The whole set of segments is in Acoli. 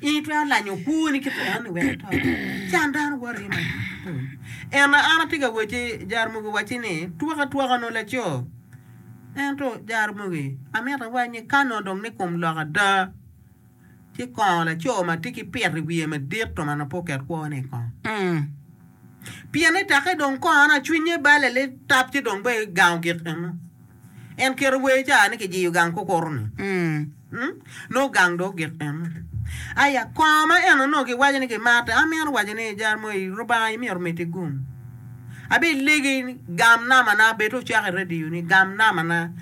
In itwero lanyo kwoni ki tweroni wek ito? Can dano woti madito. Ento an atye ka wacci, Jaramogi owacci ni, twak atwaka onongo laco. Ento, Jaramogi, amito iwac ni ka onongo dong ni kom lok ada, ci kongo laco ma tye ki pito i wiye madit to ma nongo pe oket kwone i kome. Pien ni tekki dong kongone, cwinye bale ni tap ci dong bene gango gik eno. En keto wer ca ni kijiyo gang kukuru-ni. Nongo gang dong ogik ene. Aya, kongo ma en onongo kiwaco ni kimate, amito waco ni, Jaramogi, Lubanga imyero omeddi gum. Abilegi gam namana bed ocako i radio ni gam namana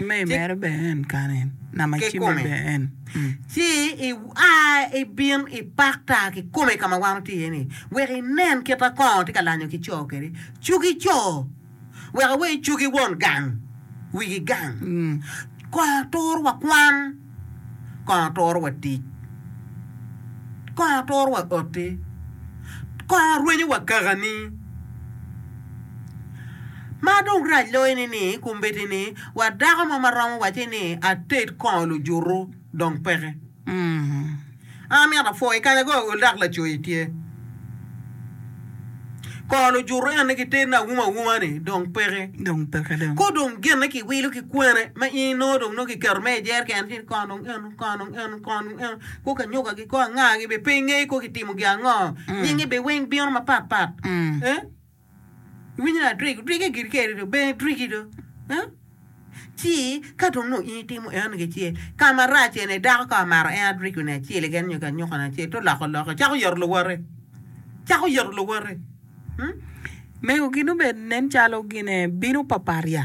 kikome, ci ia ibin ipak ta kikome ka ma wan watye iye-ni wek inen kit ma kongo tye ka lanyo ki co kwede. Cugi co! wek awe icogi won gang, wigi gang. Kong atur wa kwan, kong atur wa tic, kong atur wa oti, kong arwenyo wa kakani. Ma dong rac loyo ni ni kombeddi ni wa dako mo ma romo waci ni ated kongo lujutu dong peke. An amito apwo i kanya go ol dok lacoyi tye. Kor lujuto eni ki teni awuma awuma ni dong peke. Dong peke dong. Ko dong gin ni ki wilo ki kwene ma in inongo dong nongo ki keto me i jer kene ci kor dong eno kor dong eno kor dong eno ko ka nyoga gi ko anga gi bi pinge ko ki timo gi ango. Nyingi bi weng bino ma pat pat. Eh. Iwinyo ni adrik, drik i Girikerri do, bene driki do. Huh? Ci ka dong nongo in itimo eno nige ce, ka marac ene, dako ka omaro en adriko ni acel keken nyo ki anyuka ni acel, to loko loke, cako yoto luwote, cako yoto luwote. Huh? Mego gin obed nen calo gine bino papat ya?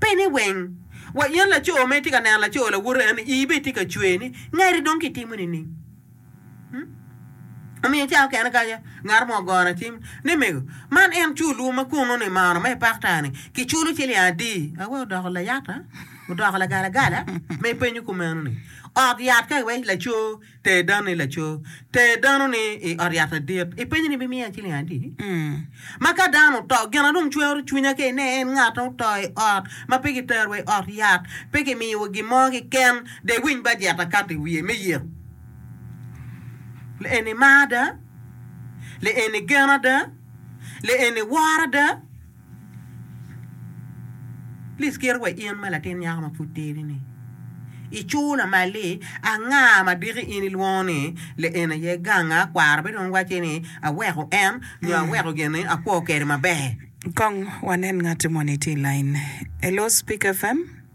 Pene weng. Wa in laco ma itye ka neno laco lawote en, ii bene tye ka cwer ni, Ngati dong kitimo nining? Hmm? Omiyo i cawa mukene kaca, ngat mo ogona cim ni, Mego, man en culwu ma kunnu ni mano me pakta-ni kiculo ciling adi? Awe odoko layata, odoko lagalagala ma ipenyo kumeno-ni. Ot yat ka iwec laco Ter dano ni laco. Ter dano ni i ot yat adit. Ipenye ni bimiya ciling adi? Ma ka dano oto, gin a dong cwero cwinya ke ine en ngat a oto i ot ma pe kitero wa i ot yat, pe kimiyo wa gin mo kiken, dong iwiny bajet akato i wiye me yek. Li eni mar ada? Li eni gen ada? Li eni woro ada? Please kit wa in ma latin nyako ma pud tidi ni i cur lamal ni anga ma diki in ilwongo ni le eni aye ganga kwara be dong wacce ni aweko en nyo aweko gin ni akwo kede maber. Kong wanen ngat moni tye i line. Hello Speak FM.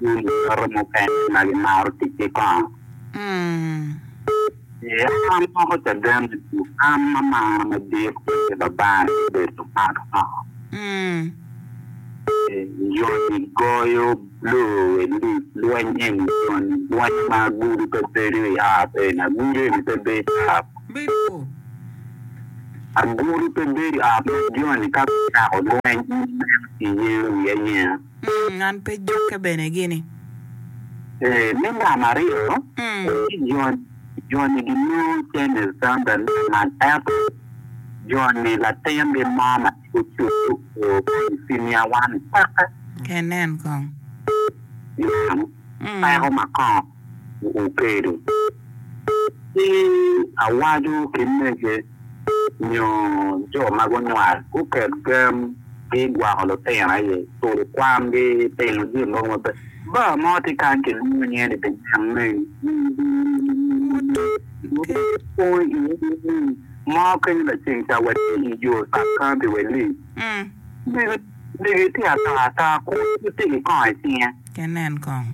Gin luyoto mukene ma gimaro ticce kong? Ee, an amoko caden me tuk. An amaro madit kwede Baban ki bedo man woko. Ee, joni goyo blue we lig lweny eni, joni lweny ma agulu pe bedo i ot eni, agulu eni pe bedo i ot. Agulu pe bedo i ot ma joni ka gucako lweny in ineno iyengo wiyi ayenga. Mm, an pe jokke bene gini. Ee, me namba aryo, Mm. jo-ni ginongo Channel Sandal lamal ento jo-ni latingi mo ma tye cukku oo ka i Siniawan peke. Enen kong. Yam, Mm. peko ma kongo. okedo ki awaco ki mege nyo jo ma gunywal, guket gam ki gwoko lutino aye turo kwan gi timo jami mogo maber. Bar mo tye kany ki lwongo nyinge ni The Young Man mo kenyo laceng ca wa tye i yo Sub County Wei Ling. Lega itye ataa ataa kun itye ki kongo i cinge. Ke nen kong.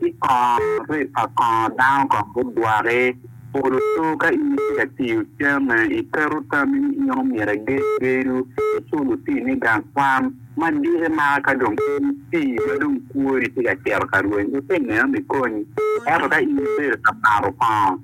Ki kongo rep pa kongo dano kong gudwaki. Polo to ka in itye ka tiyo camme, iketo tammi ni in omyero igeg gedo, icul otinni gang kwan. Ma diki maka ka dong in itii ma dong kwoni tye ka cito ka rweny, wutine ma ikonyi. Ento ka in ibedo ka mato kongo.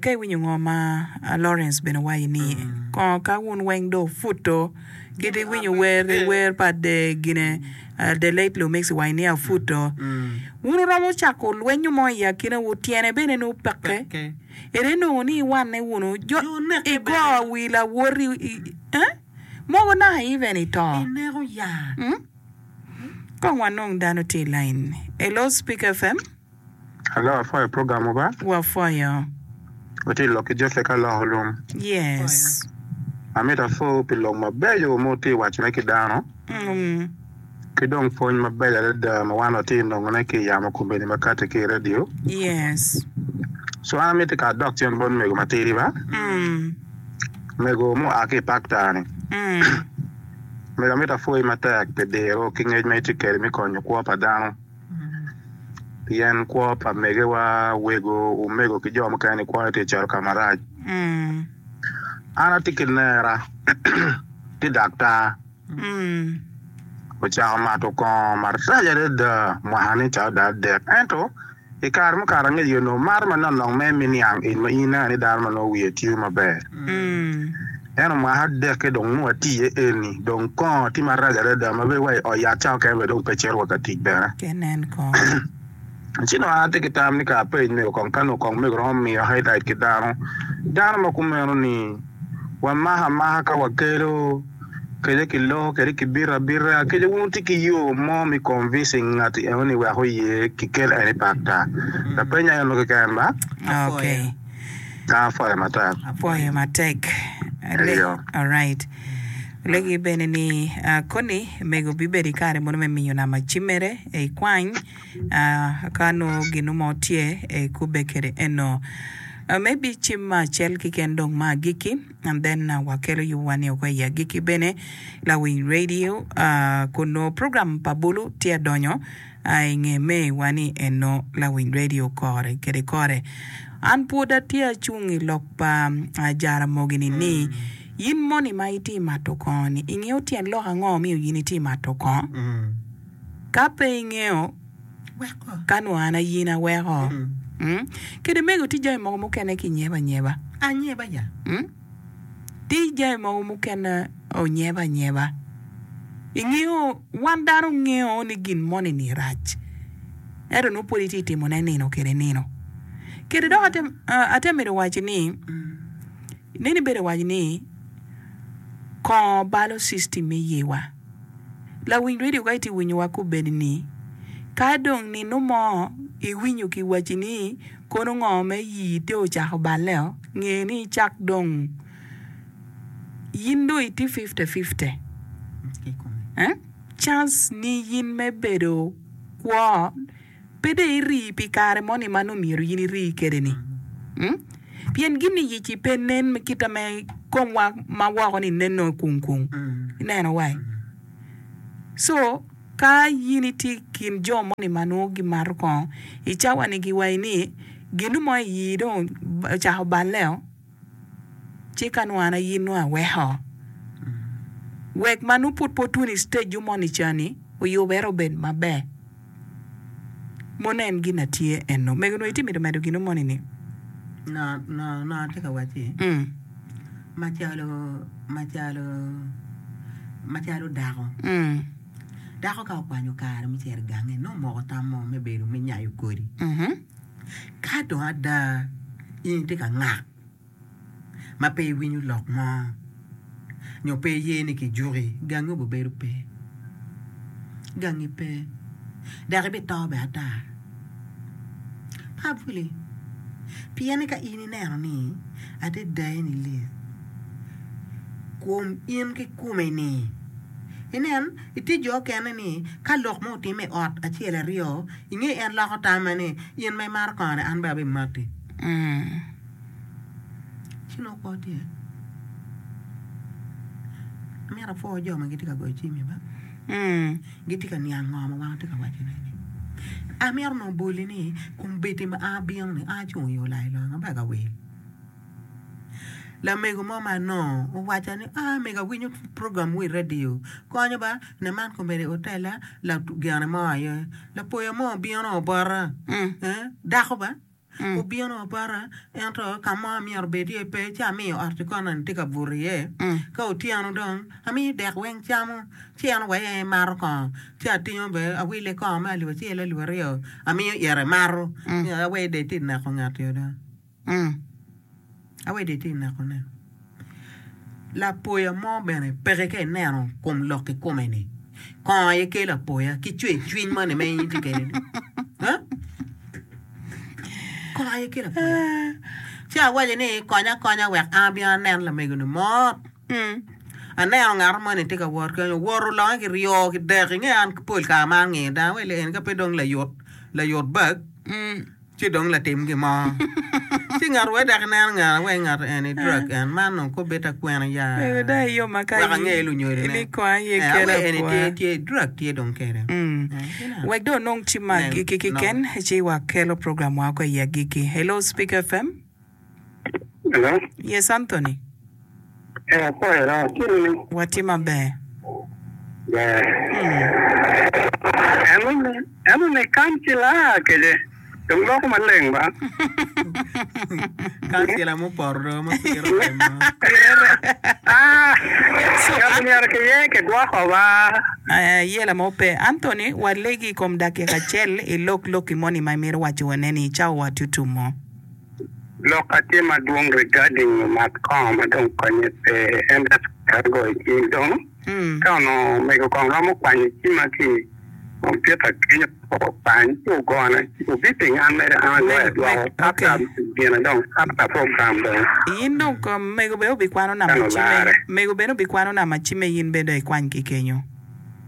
Ka iwinyo ngo ma Lawrence bene wayo ni, Kongo ka wun weng dong wuputo kit iwinyo wer i wer pa The Gine, The Late Lumix wayo ni Aputo, wun wuromo cako lwenyo mo i akinawu, tyene bene ni wupekke. Ere nongo ni iwanne wunu jo igo wi lawoti mogo naka even i to? Kong wanong dano tye i lain. Hello Speak FM. Hello, wapwoyo program wa ba. Wapwoyo. Watye lok ki Joseph ka loko lum. Yes. Amito apwowu pi lok mabeco ma wutye waco ne ki dano. Mm. Ki dong pwony mabeco adada ma wan watye nongo ne ki yamo kombeni makati ki radio. Yes. So an amito ka adok cen bot mego matidi ba. Mm. Mego mu a ki pakta ni. Mm. Mego amito apwoyi matek pi diro ki ngec ma itye kede mi konyo kwo pa dano. Pien kwo pa megiwa, wego, omego ki jo mukene i kwoyo tye cito ka marac. An atye ki nera ki daktar ocako mato kongo marac adada mwaka-ni calo dok adek. Ento, i kare mukato angeyo onongo marre manok nok mere me niang in ma in ineno ni dano ma nongo wiye tiyo maber. En omaka adekke dong nongo ati iye eni, dong kongo tye marac adada ma bene wa i ot yat cawa keken bene dong pe cito wa ka tic bene. Ki nen kong. Ci dong an atye ki tam ni kara apeny mego kong ka nongo kong mego romo miyo highlight ki dano, dano ma kumeno ni wamako amaka ka wakelo kede ki loko kede ki bito abita kede wun wutye ki yo mo me convincing ngati eno ni wek oye ki kel eni pakta? Lapenyo aye eno keken ba? Okay. Dang apwoyo matek. Apwoyo matek. Eyo. Alright. Olegi bene ni uh, koni mego bibedo i kare mono me miyo nama cimmere e i kwany uh, ka nongo ginu mo tye e kubbe kede eno. Uh, maybe cim ma acel kiken dong ma agiki and then uh, wakelo yubuwa ni oko i agiki bene lawiny radio uh, kun nongo program pa bulu tye adonyo a i nge May wa ni enno lawiny radio kore kede kore. An pwod atye acung i lok pa a Jaramogi ni ni, Yin moni ma itye mato kongo ni, ingeyo tyen lok ango omiyo yin itye mato kongo? Ka pe ingeyo, weko ka nwa an ayin aweko. Kede mego tye jami mogo mukene ki nyeba anyeba. Tic jami mogo mukene onyeba anyeba. Ingeyo wan dano ongeyo ni gin moni ni rac ento nongo pwod itye timo ne nino kede nino. Kede dok ate ate mito waci ni neno ibedo waco ni kongo balo system me yewa. Lawiny radio ka itye winyo wa kobedi ni ka dong nino mo iwinyo ki waci ni. Kono ngo me yii te ocako balle o nge ni icak dong yin dong iti fifte fifte eh chance ni yin me bedo kwo pe dong irii pi kare mo ni ma nongo myero yin irii kede ni mm pien gin ni yec i pe nen me kita me kom wa ma woko ni neno kung kung ineno wa eh so Ka in itye i kin jo moni ma nongo gimato kongo i cawani giwayi ni ginu mo i ii dong ocako balleo ci ka nongo an aye nongo aweko wek ma nongo pud pe otuno i stage mo ni ca ni oyubere obed maber mono en gin atye eno mego nongo itye mito medo ginu moni ni nga nga atye ka wacci. Macalo, macalo, macalo dako. Dako ka okwanyo kare me cito i gange, nongo omoko tam mo me bedo me nyayo kodi. Ka dong ada in itye ka ngak ma pe iwinyo lok mo nyo pe iye ni kijuki, gangi obibedo pe. Gangi pe, dok ibito bene ata. Apuli, pien ni ka in ineno ni ate dayeni lit kum in kikome-ni, inen, itye jo okene ni ka lok mo otimme i ot acel aryo, inge en loko tamme ni, In ma imato kongo-ni an bene abimati. Ee, ci nongo kwo tye. Amito apwo jo ma gitye ka goyo cim-mi ba. Gitye ka niang ngo ma wan tye ka waco ne ni. Amito nongo boli ni kombeddi ma a bino ni a cung iyo lai loyo maber ka wil. Lamego mo ma anongo owaca ni a mego awinyo program mo i radio konyo ba ne man kombeddi otella lagene mo aye lapoya mo obino obota dako ba. Obino opota, ento ka mo amyero obed iye pe, ci amiyo ot-ti kononi tye ka buto iye. Ka otyeno dong, amiyo dek weng camo, ci en oweyo en emato kongo, ci atingo bene awile kongo me alip acel, alip aryo, amiyo ite mato, aweyo dong itye ka neko ngat-ti ada. Awede itye ineko ne. Lapoya mo bene peke ka ineno kom lok kikome ni kongo aye kelo apoya ki cwer cwiny moni ma in itye kede ni. Huh? Kongo aye kelo apoya. Ci awaco ni konya akonya wek an abin anen lamegoni mot. Aneno ngato moni tye ka wot kany owoto longe ki ryo ki dek inge an pol kare ma angeyo dano wele en ka pe dong layut layut bag. Ci dong latim gin mo. Ci ngat wee dok inen ngara wek ngat eni drug en, man dong kop bed takwena ya wek ange lunyodi ne en awer eni tye tye drug tye dong kede. Gineno. Wek dong onong ci maggi ki kiken ci wa kelo program wa ko i agikki. Hello speaker FM. Hello. Yes, Anthony. Eh, akwai ira, tye nini? Watye maber. Ber. En one, en one kancila kece. Dong loko maleng ba. Kansila mupoto dong ma pire remo. Ah, ngati myero kiye kigwoko ba. Eh, ye lama ope. Anthony, walegi i kom dakika acel ilok lokki moni ma imito waco wane-ni i cawa tutumo. Lok a tye madwong regarding lumak kongo ma dong konye pe en just kare goyo cim dong ka onongo omego kong romo kwanyo cima ki computer kenyo kong okwany ci ogona obi ping an mere an agoyo adwoko after gina dong after program dong ka lularre.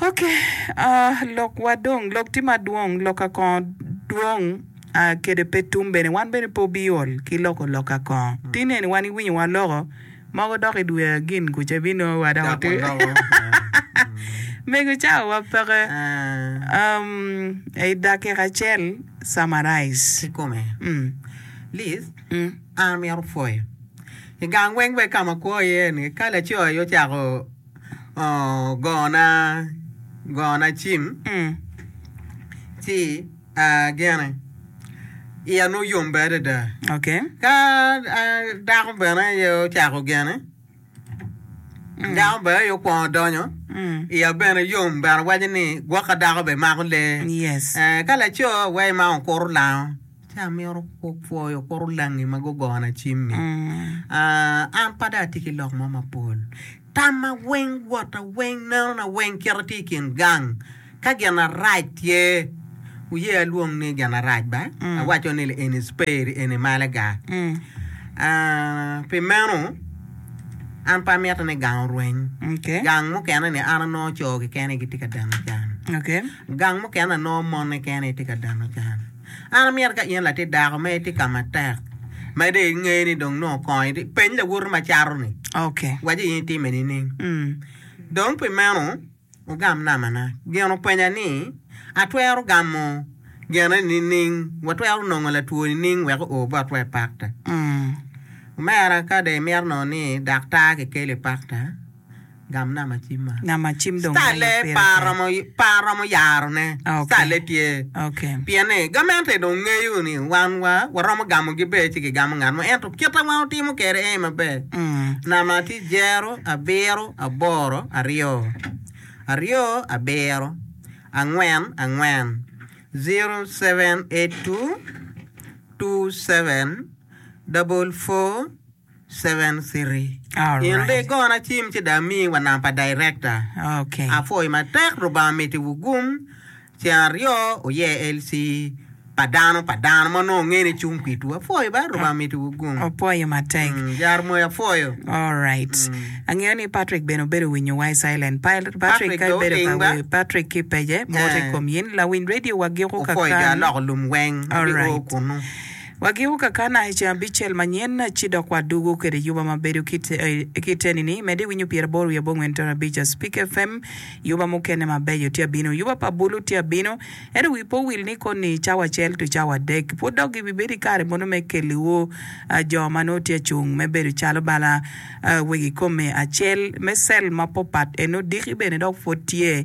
Ok lok wa dong lok tye madwong lok ka kongo dwong kede pe tum bene wan bene pe obi ol ki loko lok ka kongo ti neni wan i winyo wa loko mogo dok i dwe agin kuca i bi nongo wa dok ote mego cawa wa peke i dakika acel summarize kikome Liz an amito pwoyo i gang weng wek ka ma akwo iye ni ka laco aye ocako Gona, gona cim, ci agene. Iya nongo yombe adada. Ka dako bene aye ocako gene, dako bene aye okwongo donyo, iya bene yom bene waco ni gwok ka dako bene mako lee. Ka laco aye ma okuto lango. Ci amito pwoyo kor olangi ma gugona cim-mi. An pe dong atye ki lok mo mapol. Tamma weng, wota weng, nenona weng kit atye i kin gang. Ka gin arac tye, wuye alwong ni gin arac ba, awaco ni eni cperi, eni malaga. Pi meno, an pe amito ni gang orweny. Gang mukene-ni an anongo co keken aye gitye ka dano can. Gang mukene anongo mon keken aye tye ka dano can. An amyero ka in latit dako ma itye ka matek ma dong ingeyo ni dong nongo kong itye, peny lawote ma cato-ni, waci in itime nining? Dong pi meno wugam namana. Gin openya ni, Atwero gamo genne nining? Watwero nongo latwo nining wek oo botwa i pakta? Omera, ka dong imito nongo ni daktar kikelo i pakta, Gam nama cim ma. Nama cim dong ma ma pire tek. Star-le pe aromo yaro ne. Ah, okay. Star-le tye. Okay. Pien ni gamente dong ngeyo ni wan wa waromo gamo gi ber ci ki gamo ngat mo ento kita wa otimo kede aye ma ber. Nama tye jero, abiro, aboro, aryo, aryo, abiro, angwen, angwen, zero, seven, eight, two, two, seven, double, four. Seven City. In ri gona cim ci dong ami wa namba pa director. Apwoyo matek Lubanga miti wu gum. Ceng aryo wuye LC pa dano pa dano ma onongo ngene cung pitu. Apwoyo ba Lubanga miti wu gum. Opwoyo matek. Jar moyo apwoyo. Alright. Angeyo ni Patrick bene obedo winyo wa i silent. Patrick ka ibedo ka wer Patrick ki page moto i kom yin. Lawiny radio wa giko kaka ni. Opwoyo jo aloko lum weng ma gio kunu. Wagiko kakana i ceng abicel manyen, ci dok wadugo kwede yuba ma bedo kitenini, medi winyo pyer aboro wiye abongwen tona abica, Spik FM, yuba mukene mabeco tye abino, yuba pa bulu tye abino, ento wi pe owil ni koni cawa acel to cawa adek, pwod dok gibi bedo i kare mono me keliwu jo ma nongo tye acung me bedo calo bala wegi kome acel me cell ma popat, eno diki bene dok pwod tye.